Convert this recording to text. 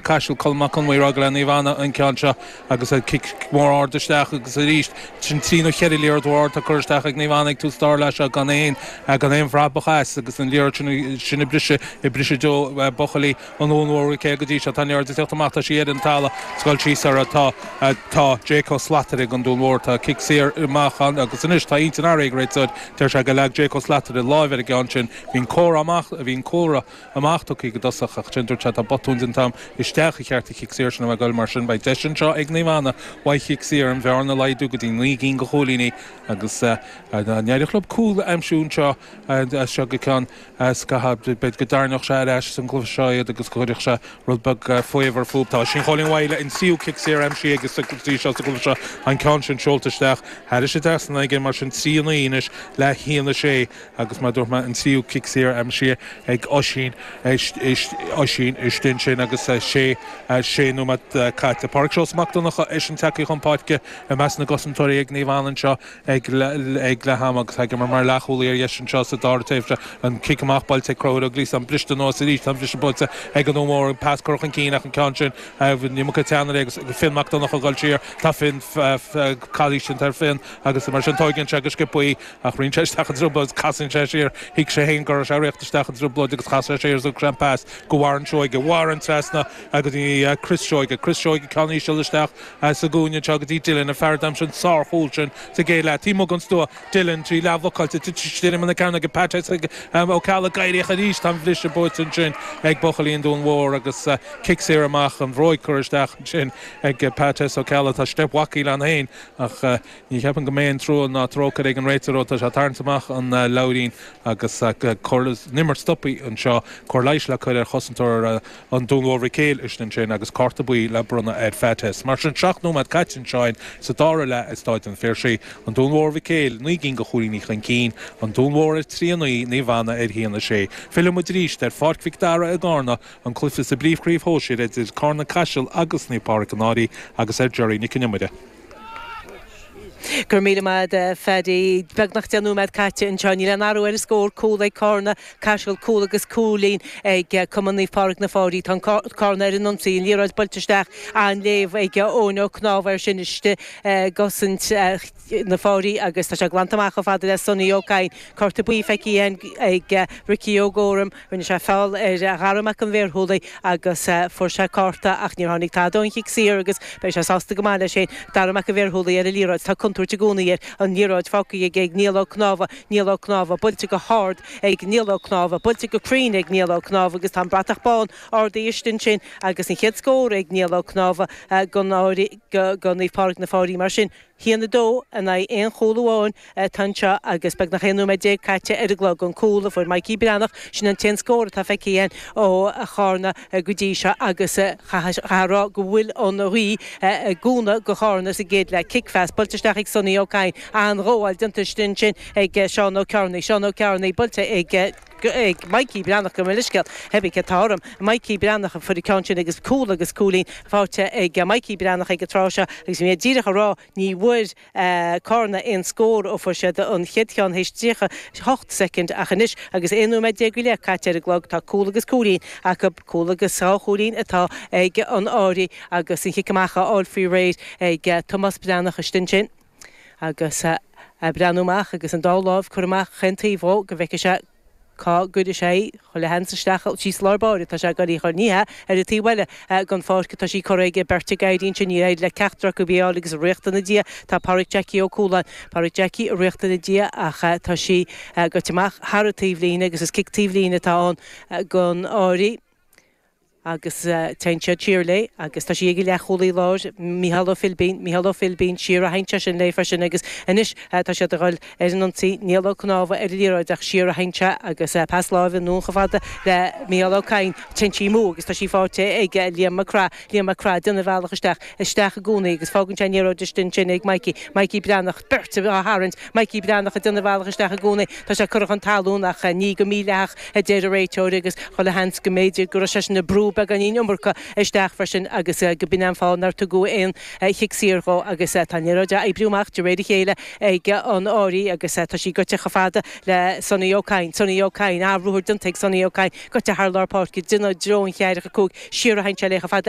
Caiseal Colm Mac Con Mí, Raghallaigh Naomh Anna, an ceann seo agus an cic mór ard isteach agus arís sin trí nó cheithre liathróid mhór atá curtha isteach ag Naomh Anna ag tús an dara leath seo gan aon gan aon bhrabach as agus an liathróid sin ag briseadh ag briseadh do bhuachaillí an Dúin Mhóir Mhic Éil go dtí seo tá an liathróid ag tíocht amach tá sí ar an talamh scaoil síos ar atá tá Jake Ó Slatara ag an Dún Mór tá cic saor amach ann agus anois tá intinn athraithe ag an réiteoir deir sé gur leag Jake Ó Slatara láimh ar an gceann sin bhí an comhartha amach bhí an comhartha amach tugtha aige i dtosach, ach ansin dúirt sé, tá botún déanta agam. Isteach ba cheart an cic saor sin a bheith ag goil mar sin. Beidh deis anseo ag Naomh Anna uaidh chic saor an bhearna a laghdú go dtí naoi gcinn go chúilíní agus dá n-éireodh leob cúl a aimsiú anseo as seo go ceann scaithimh b'fhéidir go dtarraingeodh sé ar ais sa gcluiche seo iad agus go gcuirfeadh sé rud beag faobhair fúthu. Tá Oisín Chóilín Mhaidhle an tríú cic saor aimsithe aige go dtí seo sa gcluiche seo, an ceann sin seolta isteach thairis an trasnán aige mar sin, trí a naoi anois le haon a sé. Agus mar a dúirt mé, an tríú cic saor aimsithe ag Oisín, Oisín istigh ansin agus sé nóiméad caite. Pádraig Seosamh Mac Donnacha, eisean tagtha chun páirce i measc na gcosantóirí ag Naomh Anna anseo ag leath ama agus tagtha mar leathchúlaí ar dheis anseo sa dara tréimhse. An cic amach buailte ag Conchúr Ó Glíosáin, briste anuas arís, tá an briseadh buaite ag an Dún Mór, pas curtha chun cinn ach an ceann sin, ní mó teannaire é agus Fionn Mac Donnacha ag dul siar, tá Fionn, calaois déanta ar Fionn agus mar sin tóigeann sé go sciobthaí. Ach rith sé isteach i dtrioblóid is casann sé siar, thuig sé féin go raibh sé ag rith isteach i dtrioblóid agus chas sé siar is thug sé an pas go Warren Seoige, Warren trasna go dtí Chris Seoige, Chris Seoige ceann íseal isteach sa gcúinne anseo go dtí Dylan, an fear a d'aimsigh an sárchúl sin sa gcéad leath, taobh amuigh den stua. Dylan, tá sí leathbhlocáilte, tit is tirim ina cearn aige, Pat S Ó Ceallaigh ag éirí aníos, tá an briseadh buaite ansin ag buachaillí an Dúin Mhóir agus cic saor amach, an bhróig curtha isteach ansin ag Pat S Ó Ceallaigh, tá steip Mhac Gill-Eain féin ach. Ní cheapaim go mbeidh aon trua ná trócaire ag an réiteoir ó tá sé ag tarraingt amach an leabhairín agus go bhfuil an imirt stopthaí anseo, cóir leighis le cur ar chosantóir an Dúin Mhóir Mhic Éil istigh ansin agus cárta buí le bronnadh air, Fates. Mar sin seacht nóiméad caite anseoin sa dara leath i Stáid an Phiarsaigh, An Dún Mór Mhic Éil naoi gcinn go chúilíní chun cinn, An Dún Mór ar trí a naoi, Naomh Anna ar a haon a sé. Filleann muid arís ar Pháirc Mhic Dara i gCarna, an cluiche sa bpríomhchraobh shóisir idir Carna-Caiseal agus Naomh Pádraic-An Fhairche agus ar Gerry Nic an Iomaire. Go raibh míle maith agat a Pháraic. Beagnach deich nóiméad caite anseo. Níl aon athrú ar an scór. Cúl ag Carna-Caiseal, cúl agus cúilín ag Cumann Naomh Pádraig na Fairche. Tá Carna ar an ionsaí. An liathróid buailte isteach an-léamh ag Eoin Ó Cnámha ansin istigh i gcosaint na Fairche agus tá sé glanta amach chomh fada le Sonny Ó Cadhain. Cárta buí feicthe ag Ricky Ó Guairim. Rinne sé feall ar Dhara Mac an Bhearshúiligh agus fuair sé cárta ach níor tháinig tada ón chic saor agus beidh sé sásta go maith leis féin, Dara Mac an Bhearshúiligh, ar an liathróid. Tá contúirt i gcónaí air. An liathróid fágtha aige ag Niall Ó Cnámha. Niall Ó Cnámha. Buailte go hard ag Niall Ó Cnámha. Buailte go cruinn ag Niall Ó Cnámha agus tá an bratach bán ardaithe istigh ansin agus an chéad scór ag Niall Ó Cnámha gon Fhairche, go Naomh Pádraig na Fairche mar sin. Sin a 2 in aghaidh 1 chúl amháin atá anseo agus beagnach 11 nóiméad caite ar an gclog. An cúl a fuair Mikey Breathnach, sin an t-aon scór atá feicthe againn ó Charna go dtí seo agus chaithfeá a rá go bhfuil an ghaoth i gcúnamh go Charna sa gcéad leath. Cic-phas, buailte isteach ag Sonny Ó Cadhain, an-ghabháil déanta istigh ansin ag Seán Ó Cearnaigh. Seán Ó Cearnaigh, buailte ag. ag Mikey Breathnach gabh mo leithscéal Heavy atá orm. Mikey Breathnach a fuair an ceann sin agus cúl agus cúilín faighte ag Mikey Breathnach ag an tráth seo agus mé díreach a rá ní bhfuair Carna aon scór ó fuair siad an chéad cheann théis 38 soicind ach anois agus 11 nóiméad go leith caite ar an gclog tá cúl agus cúilín acu. Cúl agus dhá chúilín atá ag an Fhairche agus an cic amach á fháil faoi réir ag Tomás Breathnach istigh ansin. agus a' breathnú amach agus an dá láimh curtha amach 'chaon taobh dhó go bhfeiceadh sé cá gcuireadh sé í, chuile sheans isteach síos lár báire tá sé ag gabháil í chur, ní hea, ar a' taobh eile gon pháirc atá sí curtha aige, beirt ag éirí ansin, níor éirigh le ceachtar acu í a fháil agus a' ritheacht ina diaidh tá Pádhraic Jackie Ó Cualáin, Pádhraic Jackie a' ritheacht ina diaidh ach tá sí gaibhte amach thar a' taobhlíne agus is cic taobhlíne atá ann gon Fhairche. agus téann siad siar léi agus tá sí ag an leathchúlaí láir, Mícheál Ó Philbín, Mícheál Ó Philbín, siar a théann sé sin léi freisin agus anois tá siad ag dul ar an ionsaí, Niall Ó Cnámha ar an liathróid ach siar a théann sé agus pas láimhe anonn chomh fada le Mícheál Ó Cadhain, téann sí amú agus tá sí fáighte ag Liam Mac Craith, Liam Mac Craith, déanamh a bhealach isteach, isteach i gcónaí agus fágann sé an liathróid istigh ansin ag Mikey, Mikey Breathnach, beirt á tharraingt. Micí Breathnach ag déanamh a bhealach isteach i gcónaí. Tá sé curtha chun talún ach ní go mídhleathach, a deir an réiteoir, agus chuile sheans go mb'fhéidir go raibh seisean ag brú beagáinín iomarca isteach freisin agus go b'in an fáth nár tugadh aon chic saor dhó. Agus tá an liathróid á oibriú amach de réir a chéile ag an Fhairche agus tá sí goite chomh fada le Sonny Ó Cadhain. Sonny Ó Cadhain! An-ruathar déanta ag Sonny Ó Cadhain, goite thar lár páirce, déanamh i dtreo an cheathracha cúig, siar a théann sé léi chomh fada